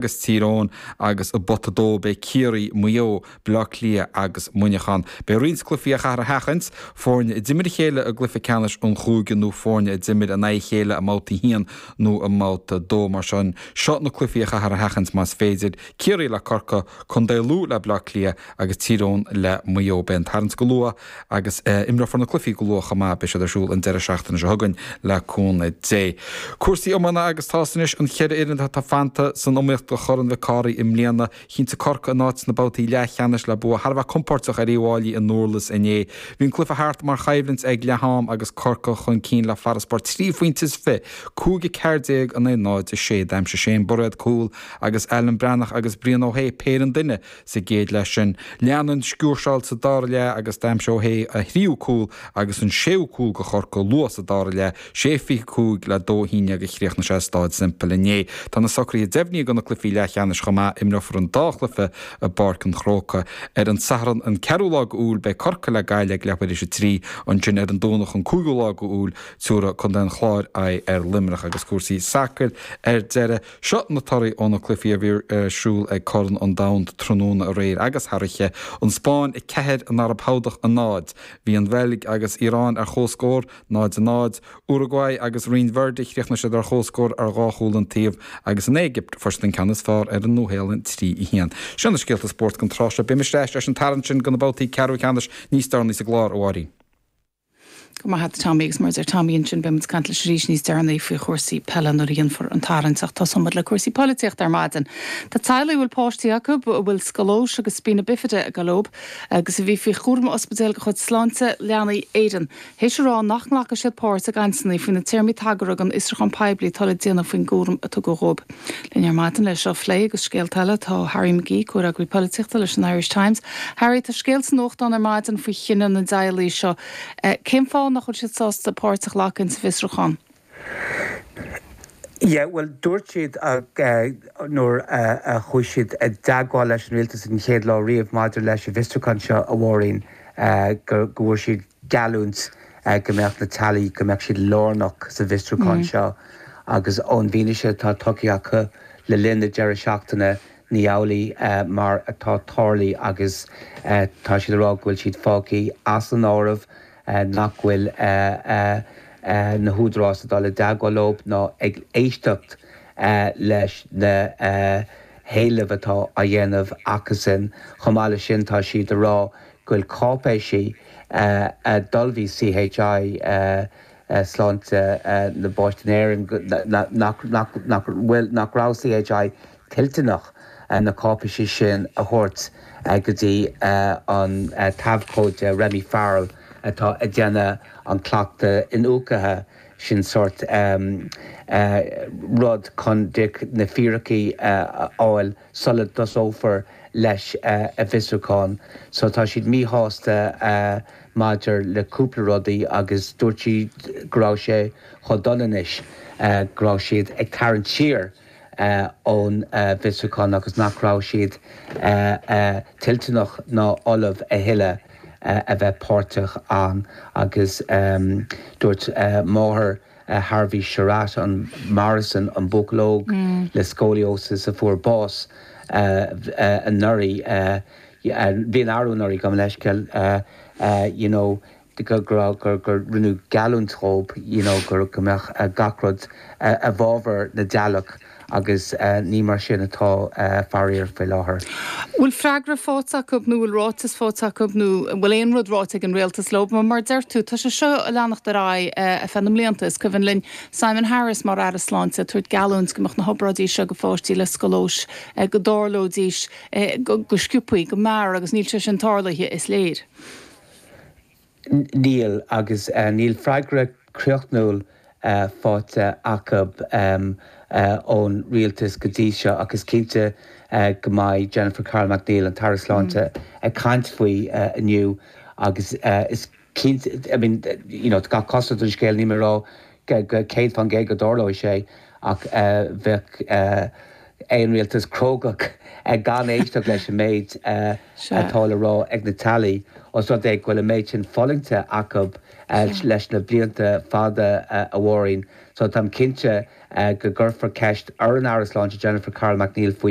agus Tír Eoghain agus i bpota 2 beidh Ciarraí, Maigh Eo, Baile Átha Cliath agus Muineachán. Beidh roinnt cluichí a chaithear a sheachaint, foirne a d'imir a chéile i gcluiche ceannais an chúige nó foirne a d'imir in aghaidh a chéile i mbabhta a haon nó i mbabhta a dó. Mar sin, seo na cluichí a chaithear a sheachaint más féidir, Ciarraí le Corcaigh, Co. Lú le Baile Átha Cliath agus Tír Eoghain le Maigh Eo. Beidh an tarraingt go luath. agus imreofar na cluichí go luath chomh maith. Beidh siad ar siúl an deireadh seachtaine seo chugainn le cúnamh Dé. Cúrsaí iomána agus tá's anois cén cheithre fhoireann atá fanta san iomaíocht do Chorn Mhic Cárthaigh i mbliana. Chinntigh Corcaigh a n-áit sna babhtaí leathcheannais le bua thar a bheith compóirteach ar Uíbh Fháilí i nDurlas inné. Bhí an cluiche thart mar choimhlint ag leath-am agus Corcaigh chun cinn le farasbarr trí phointe is fiche, 5 14 in aghaidh 0 6, d'aimsigh Shane Bairéad cúl agus Alan Breathnach agus Brian Ó hAodha péire an duine. Sa gcéad leath sin, lean an sciúrsáil sa dara leath agus d'aimsigh Ó hÉ a thríú cúl agus an séú cúl do Chorcaigh luath sa dara leath, sé fiche cúig le dó a haon déag a chríochnaigh sé i Stáid Semple inné. Tá na socruithe deimhnithe do na cluichí leathcheannais chomh maith, imreofar an dá chluiche i bPáirc an Chrócaigh. Ar an Satharn an ceathrú lá de Iúil beidh Corcaigh le Gaillimh ag leathuair théis a trí, ansin ar an Domhnach an cúigiú lá de Iúil tiúrfaidh Contae an Chláir aghaidh ar Luimneach agus cúrsaí sacair ar deireadh. Seo na torthaí ó na cluichí a bhí ar siúl ag Corn an Domhain tráthnóna aréir agus thar oíche, An Spáinn 4 an Araib Shádach 0. Bhí an Bheilg agus Iaráin ar chomhscór, 0 0. Uruguay agus Rinn Verde chríochnaigh siad ar chomhscór ar dhá chúl an taobh agus an Éigipt fuair siad an ceann is fearr ar an Nua-Shéalainn 3 1. Sin na scéalta spóirt don tráth seo. Beidh muid ar ais leis an tarraingt sin do na babhtaí ceathrú ceannais níos deireanaí sa gclár, a Mháirín. Go raibh maith agat Tommy, agus mar a deir Tommy ansin, beimid ag caint leis arís níos deireanaí faoi chúrsaí peile nuair a dhéanfar an tarraingt ach tosóimid le cúrsaí poilitíochta ar maidin. Tá teaghlaigh a bhfuil páistí acu a bhfuil scolóis agus spina bifida ag gabháil dóibh agus a bhí faoi chúram ospidéil de chuid Sláinte Leanaí Éireann théis a rá nach nglacfaidh siad páirt i gcainteanna faoi na téarmaí tagartha don fhiosrúchán poiblí atá le déanamh faoin gcúram a tugadh dhóibh. Linn ar maidin le seo a phlé agus scéalta eile tá Harry McGee, comhfhreagraí polaitíochta leis an Irish Times. Harry, tá scéal sa nuachtán ar maidin faoi chinneadh na dteaghlaigh seo. Cén fáth nach bhfuil siad sásta páirt a ghlacadh insa bhfiosrúchán? Yeah, bhuel dúirt siad nuair a chuaigh siad i dteagmháil leis an Rialtas an chéad lá riamh maidir leis an bhfiosrúchán seo, a Mháirín, go bhfuair siad, geallúint go mbeadh na teaghlaigh, go mbeadh siad lárnach sa bhfiosrúchán seo agus ón bhfianaise atá tugtha acu le linn na deireadh seachtaine ní amhlaidh mar atá tarlaithe agus tá siad ag rá go bhfuil siad fágtha as an áireamh nach bhfuil na húdaráis ag dul i dteagmháil leo ná ag éisteacht leis na héilimh atá á dhéanamh acusan. Chomh maith leis sin tá siad ag rá go bhfuil cáipéisí a d'ullmhaigh CHI Sláinte na bPáistí in Éirinn, nach raibh CHI toilteanach na cáipéisí sin a thabhairt go dtí an t-abhcóide Remy Farrell atá ag déanamh an cleachtadh iniúcaithe sin sórt rud chun na fíricí a fháil. sula dtosófar leis a' bhfiosrúchán. So tá siad míshásta maidir le cúpla rudaí agus dúirt siad go raibh sé chomh dona anois go raibh siad ag tarraingt siar ón bhfiosrúchán agus nach raibh siad toilteanach ná ullamh a thuilleadh a bheith páirteach ann agus dúirt máthair Harvey Sherratt, an Morrison, an buachaill óg le scoliosis a fuair bás anuraidh, bhuel arú anuraidh, gabh mo leithscéal, you know go raibh, gur, gur rinneadh geallúint dóibh, you know, go mbeadh gach rud i bhfábhar na dteaghlach. agus ní mar sin atá faraor faoi láthair. bhfuil freagra faighte acu nó bhfuil ráiteas faighte acu nó bhfuil aon rud ráite ag an Rialtas leo. Mar mar deir tú, tá sé seo a leanacht ar aghaidh ar feadh na mblianta. Is cuimhin linn Simon Harris mar Aire Sláinte ag tabhairt geallúint go mbeadh na hobráidí seo go pháistí le scolóis, go dtarlóidís, go sciobtha, go mear agus níl sé sin tarlaithe, is léir. Níl, agus níl freagra críochnúil faighte acu ón rialtas go dtí seo ach is cinnte go mbeidh Jennifer Carroll MacNeill, an tAire Sláinte, ag caint faoi inniu agus is cinnte, I mean, you know, gach cosúlacht ar an scéal níl mé ag rá 100 fán gcéad go dtarlóidh sé ach bheadh aon rialtas crógach gan éisteacht leis an méid atá le rá ag na teaghlaigh os rud é go bhfuil an méid sin fulaingte acu leis na blianta fada amháin. So táim cinnte go gcuirfear ceist ar an Aire Sláinte Jennifer Carroll MacNeill faoi.